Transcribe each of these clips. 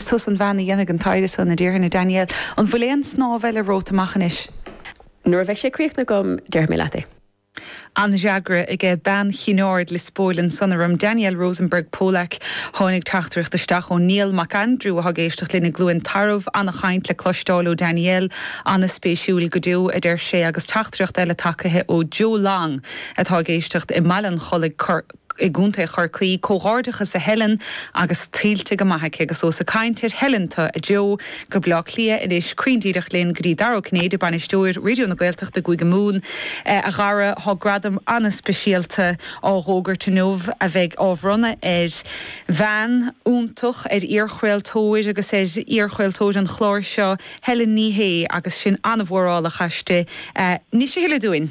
Thuas an bhean a dhéanfaidh an taighde san, a déarfainn, a Daniel. An bhfuil aon snámh eile romhat amach anois? Nuair a bheidh sé críochnaithe agam, déarfaidh mé leat é. An-fhreagra aige. Bean Chinn Aird Liospóil ansan orm. Daniel Rosenberg Polak. Tháinig teachtaireacht isteach ó Niall Mac Aindriú atá ag éisteacht linn i gCluain Tarbh. An-chaint le cloisteáil ó Daniel. An-spéisiúil go deo, adeir sé, agus teachtaireacht eile tagaithe ó Joe Long atá ag éisteacht i mBaile an Chollaigh i gContae Chorcaí, comhghairdeachas a Helen agus tuillte go maith aici agus ós ag caint ar Helen tú, a Joe, go Bleá Cliath anois cruinn díreach linn go dtí Dara Ó Cinnéide, Bainisteoir Raidio na Gaeltachta i gCúige Mumhan, a Dhara, tá gradam ana-speisialta á dh'fhógairt inniu a bheidh á bhronnadh ar bhean iontach, ar iarchraoltóir agus ar iarchraoltóir an chláir seo, Helen Ní Shé agus sinn ana-mhórálach aisti. Inis a thuilleadh dúinn.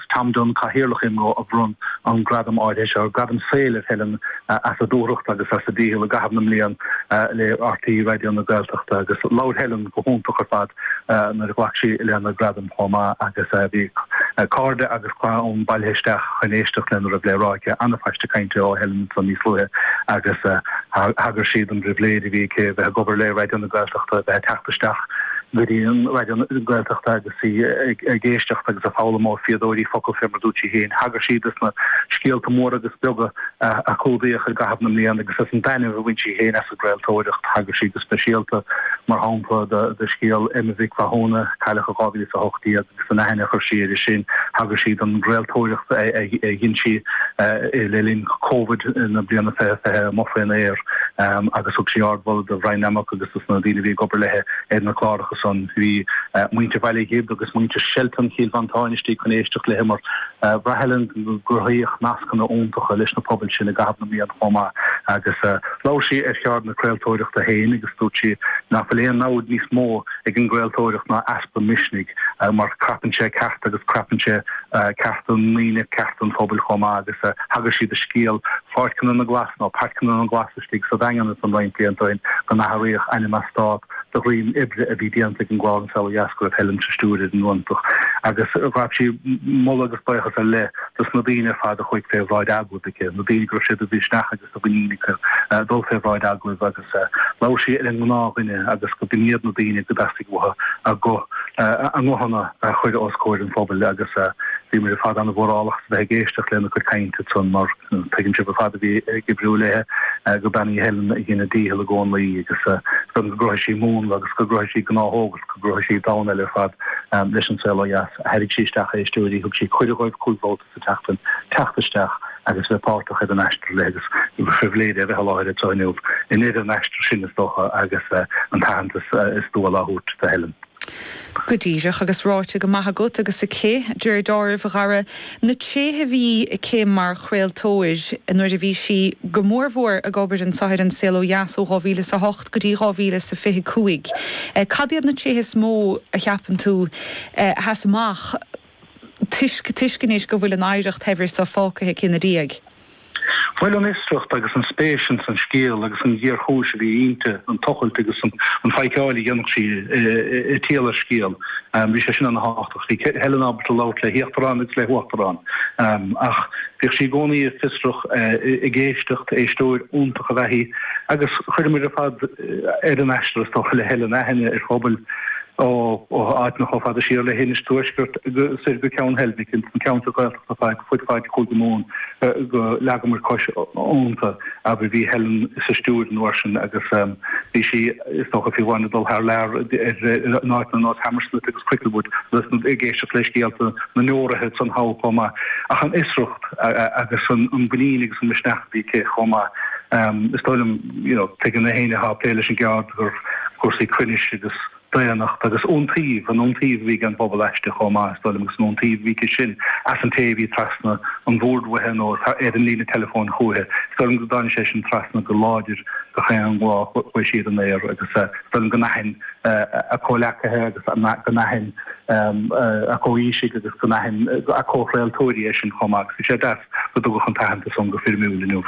Tom Dunne, Cathaoirleach IMRO, a bhronn an gradam áirithe seo, Gradam Saoil, ar Helen as a dúthracht agus as a dícheall i gcaitheamh na mblian le RTÉ Raidió na Gaeltachta agus labhair Helen go hiontach ar fad nuair a ghlac sí lena gradam chomh maith agus bhí cairde agus clann bailithe isteach chun éisteacht lena raibh le rá aici. An-phaiste cainte ó Helen ansan níos luaithe agus thagair sí don bpribhléid a bhí aici bheith ag obair le Raidió na Gaeltachta, bheith ag teacht isteach go dtí Raidió na Gaeltachta agus. í ag éisteacht agus ag foghlaim ó fíodóirí focal fé mar a dúirt sí féin. Thagair sí do na scéalta móra agus beaga a clúdaíodh i gcaitheamh na mblian agus as an dtaitneamh a bhain sí féin as an gcraoltóireacht. Thagair sí go speisialta, mar shampla, do scéal Emma Mhic Mhathúna, a cailleadh in 2018, agus don aithne a chuir sí uirthi sin. Thagair sí don gcraoltóireacht a dhein sí le linn Covid na bliana 2020, amuigh fén aer, agus thug sí ardmholadh do Bhrian Nammock agus do na daoine a bhí ag obair léi ar na cláracha. agus an, bhí, muintir Bhaile Ghib agus muintir Shelton Chill Mhantáin istigh chun éisteacht léi mar bhraith Helen go gcruthaíodh nascanna iontacha leis na pobail sin i gcaitheamh na mblian chomh maith agus labhair sí ar cheird na craoltóireachta féin agus dúirt sí nach bhfuil aon namhaid níos mó ag an gcraoltóireacht ná easpa misnigh mar crapann sé cearta agus crapann sé cearta na ndaoine, cearta an phobail chomh maith agus thagair sí do scéal Pháirceanna na nGlas nó Páirceanna na nGlas istigh sa Daingean ansan roinnt blianta ó shin go n-athraíodh ainm eastát de dhroim oibre a bhí déanta ag an gclár An Saol ó Dheas go raibh Helen sa stiúir ar an nGlúnach agus ghabh sí moladh agus baochas ar leith dos na daoine ar fad a chuaigh fé bhráid agallaimh aici, na daoine go raibh sé de mhisneach agus de mhuinín acu dul fé bhráid agallaimh agus labhair sí ar an ngnáthdhuine agus gurb in iad na daoine go dteastaigh uaithi a guth a nguthanna a chur os comhair an phobail agus bhíomar ar fad an-mhórálach as a bheith ag éisteacht lena cuid cainte mar Tuigeann sibh ar fad a bhí ag oibriú léithe gur bean í Helen a dhein a dícheall i gcónaí agus go gcruthaigh sí múnla agus go gcruthaigh sí gnáthóg agus go gcruthaigh sí domhan eile ar fad leis An Saol Ó Dheas. Tharraig sí isteach éisteoirí, thug sí cuireadh dóibh cúig bhabhta sa tseachtain teacht isteach agus bheith páirteach ar an aistear léi agus ba phribhléid é a bheith i láthair anseo inniu i ndeireadh an aistir sin, is dócha, agus an t-aitheantas is dual á thabhairt do Helen. Go díreach agus ráite go maith agat agus aici, dáiríre, a Dhara, na tréithe a bhí aici mar chraoltóir nuair a bhí sí go mór mhór ag obair anseo ar An Saol Ó Dheas ó 2000 is a hocht go dtí 2000 is a fiche cúig. Cad iad na tréithe is mó a cheapann tú a sheas amach? toisc anois go bhfuil an oidhreacht shaibhir so fágtha aici ina diaidh. Bhuel an fhiosracht agus an spéis ins an scéal agus an ghéarchúis a bhí inti, an tochailt agus an phóirseáil a dhéanfadh sí i dtreo scéal, bhí sé sin ana thábhachtach. Bhí Helen ábalta labhairt le híochtaráin agus le huachtaráin ach bhíodh sí i gcónaí fiosrach ag éisteacht, éisteoir iontach ab ea í agus chuireamair ar fad ar an aistear is dócha le Helen aithne ar phobal ó áiteanna chomh fada siar le hInis Tuaisceart soir go Ceann Heilbhic, ins na ceantracha Gaeltachta ar fud faid Chúige Mumhan, gur leagamair cos iontu, abair. Bhí Helen sa stiúideo an uair sin agus bhí sí, is dócha, fiú amháin ag dul thar lear in áiteanna nós Hammersmith agus Cricklewood agus ag éisteacht le scéalta na ndeoraithe san thall chomh maith. Ach an fhiosracht agus an mhuinín agus an misneach a bhí aici chomh maith, is dóigh liom, you know Tuigeann aon duine atá ag plé leis an gceird cúrsaí cruinnis agus daonnacht agus iontaoibh, an iontaoibh a bhí ag an bpobal aisti chomh maith, is dóigh liom, agus an iontaoibh a bhí aici sin as an té a bhí trasna an bhoird uaithi nó ar an líne teileafóin chúithi. Is dóigh liom go dtáinig sé sin trasna go láidir gach aon lá a chuaigh sí ar an aer agus is dóigh liom go n-aithin a comhleacaithe agus go n-aithin a comhaoisigh agus go n-aithin a comhchraoltóirí é sin chomh maith agus bhí sé deas go dtugadh an t-aitheantas san go foirmiúil inniu.